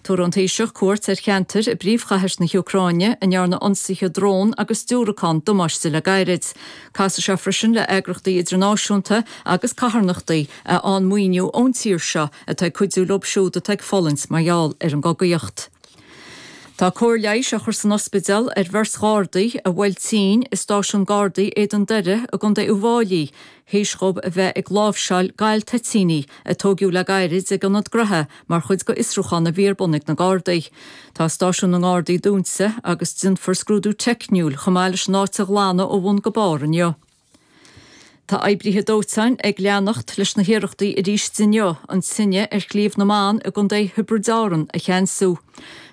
Tabharfaidh an Taoiseach cuairt ar cheantair i bpríomhchathair na hÚcráine a ndearnadh ionsaithe drón agus diúracán damáiste dóibh le gairid. Casfaidh sé freisin le eagrachtaí idirnáisiúnta agus carthanachtaí a fhaigheann maoiniú ón tír seo atá ag cuidiú leo siúd atá ag fulaingt mar gheall ar an gcogaíocht. Tá cóir leighis á chur san ospidéal ar bheirt Ghardaí a buaileadh tinn i stáisiún Gardaí Éadan Doire i gContae Uíbh Fhailí théis dhóibh a bheith ag láimhseáil galtoitíní a tóigeadh le gairid ag ionad gnotha mar chuid d'fhiosrúchán a bhí ar bun ag na Gardaí. Tá stáisiún na nGardaí dúnta agus déanfar scrúdú teicniúil chomh maith leis an áit a ghlanadh ó bhun go barr inniu. Tá oibrithe dóiteáin ag leanacht leis na hiarrachtaí arís inniu an tine ar Shliabh na mBan i gContae Thiobraid Árann a cheansú.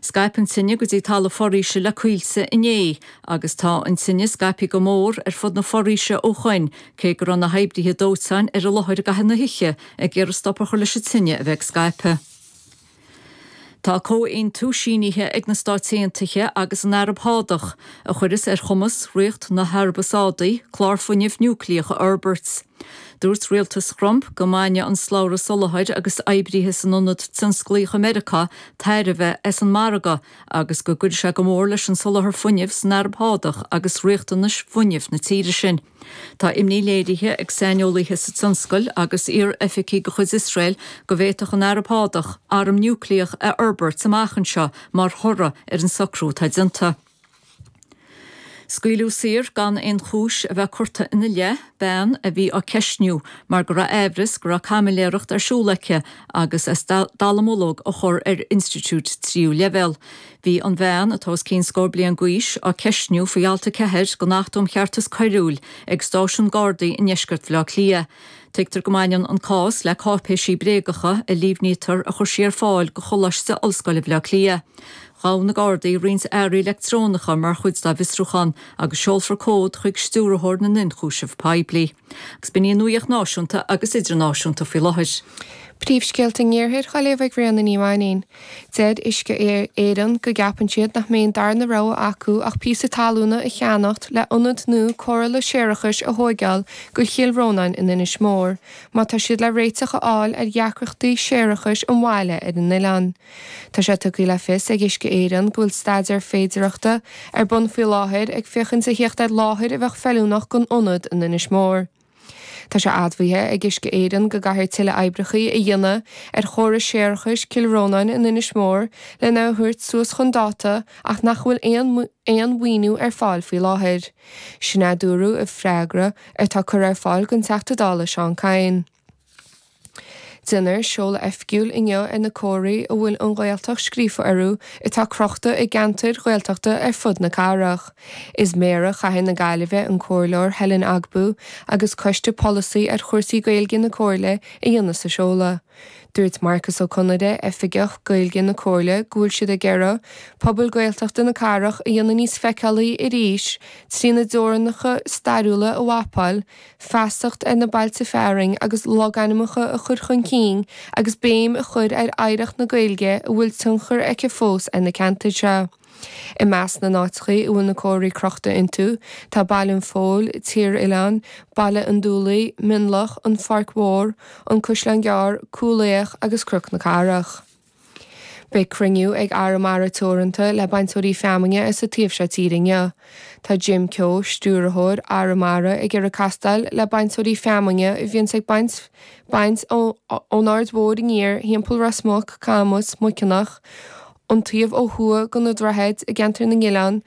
Scaip an tine go dtí talamh foraoise le Coillte inné agus tá an tine scaipthe go mór ar fud na foraoise ó shoin cé go raibh na hoibrithe dóiteáin ar an láthair i gcaitheamh na hoíche ag iarraidh stop a chur leis an tine a bheith ag scaipeadh. Tá comhaontú sínithe ag na Stáit Aontaithe agus an Araib Shádach a chuireas ar chumas Ríocht na hAraibe Sádaí clár fuinnimh núicléach a fhorbairt. Dúirt rialtas Thrump go mbainfeadh an slabhra soláthair agus oibrithe san ionad tionsclaíoch i Meiriceá tairbhe as an margadh agus go gcuirfidh sé go mór leis an soláthar fuinnimh san Araib Shádach agus riachtanais fuinnimh na tíre sin. Tá imní léirithe ag saineolaithe sa tionscail agus iar-oifigigh de chuid Iosrael go bhféadfadh an Araib Shádach arm núicléach a fhorbairt amach anseo mar thoradh ar an socrú atá déanta. Scaoileadh saor gan aon chúis a bheith curtha ina leith, bean a bhí á ceistniú mar go raibh aimhreas go raibh caimiléireacht ar siúl aici agus as dallamullóg a chur ar institiúid tríú leibhéal. Bhí an bhean, atá os cionn scór bliain d'aois, á ceistniú faoi Alt 4 den Acht um Cheartas Coiriúil ag Stáisiún Gardaí i ndeisceart Bhaile Átha Cliath. Tuigtear go mbaineann an cás le cáipéisí bréagacha a líomhnaítear a chuir sí ar fáil do Choláiste Ollscoile Bhaile Átha Cliath. Ghabh na Gardaí roinnt earraí leictreonacha mar chuid dá bhfiosrúchán agus seolfar comhad chuig Stiúrthóir na nIonchúiseamh Poiblí agus b'in í an nuaíocht náisiúnta agus idirnáisiúnta faoi láthair. Príomhscéalta an iarthair dhá léamh ag Ríona Ní Mhainín. Deir Uisce Éireann go gceapann siad nach mbeidh an darna rogha acu ach píosa talúna a cheannacht le ionad nua cóireála séarachais a thóigeáil do Chill Rónáin in Inis Mór má tá siad le réiteach a fháil ar dheacrachtaí séarachais an bhaile ar an oileán. Tá sé tugtha le fios ag Uisce Éireann go bhfuil staidéar féidireachta ar bun faoi láthair ag féachaint a theacht ar láthair a bheadh feiliúnach don ionad in Inis Mór. Tá sé admhaithe ag Uisce Éireann go gcaithfear tuilleadh oibreacha a dhéanamh ar chóras séarachais Chill Rónáin in Inis Mór lena thabhairt suas chun dáta ach nach bhfuil aon mhaoiniú ar fáil faoi láthair. Sin é a dúradh i bhfreagra atá curtha ar fáil don Teachta Dála Seán Kyne. Deineadh seoladh oifgiúil inniu ar na comharthaí a bhfuil An Ghaeltacht scríofa orthu atá crochta i gceantair Ghaeltachta ar fud na cathrach. Is í Méara Chathair na Gaillimhe an Comhairleoir Helen Ogbu agus Coiste Polasaí ar Chúrsaí Gaeilge na Comhairle a dhéanfas an seoladh. Dúirt Marcus Ó Conaire, Oifigeach Gaeilge na Comhairle go bhfuil siad ag iarraidh pobail Gaeltachta na cathrach a dhéanamh níos feiceálaí arís trína dteorainneacha stairiúla a mhapáil feasacht ar na bailte fearainn agus logainmneacha a chur chun cinn agus béim a chur ar oidhreacht na Gaeilge a bhfuil tionchar aici fós ar na ceantair seo. I measc na n-áiteacha a bhfuil na comharthaí crochta iontu tá Baile an Phoill, Tír Oileán, Baile an Dúlaigh, Mionlach, An Pháirc Mhór, An Caisleán Gearr, Cúil Each agus Cnoc na Cathrach. Beidh cruinniú ag Arramara Teoranta le bainteoirí feamainne sa taobh seo tíre inniu. Tá Jim Keogh, Stiúrthóir Arramara, ag iarraidh castáil le bainteoirí feamainne a bhíonns ag baint baint ón Aird Mhóir aniar, thimpeall Ros Muc, Camus, Muiceanach, an taobh ó thuaidh de na Droichid, i gceantar na nOileán,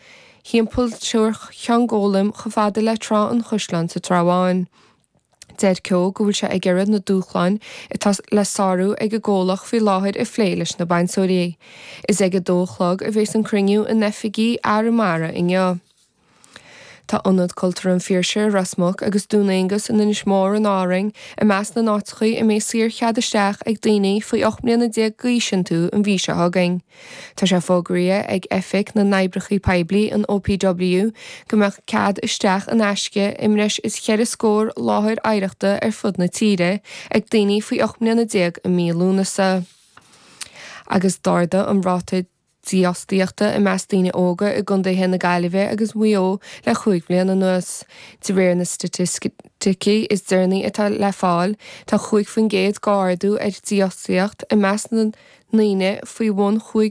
thimpeall thar Cheann Gólaim chomh fada le Trá an Chaisleáin sa Trá Bháin. Deir Keogh go bhfuil sé ag iarraidh na dúshláin atá le sárú ag an gcomhlacht faoi láthair a phlé leis na bainteoirí. Is ag 2 a chlog a bheas an cruinniú in oifigí Arramara inniu. Tá Ionad Cultúrtha an Phiarsaigh i Ros Muc agus Dún Aonghasa in Inis Mór in Árainn i measc na n-áiteacha a mbeidh saor-chead isteach ag daoine faoi 18 mbliana d'aois iontu an mhí seo chugainn. Tá sé fógraithe ag Oifig na nOibreacha Poiblí, an OPW, go mbeadh cead isteach in aisce i mbreis is cheithre scór láthair oidhreachta ar fud na tíre ag daoine faoi 18 mbliana i mí Lúnasa agus d'ardadh an ráta dífhostaíochta i measc daoine óga i gcontaetha na Gaillimhe agus Mhaigh Eo le cúig bhliain anuas, de réir na staitis. ticí is deireanaí atá le fáil, tá 5% d'ardú ar dhífhostaíocht i measc na ndaoine faoi bhun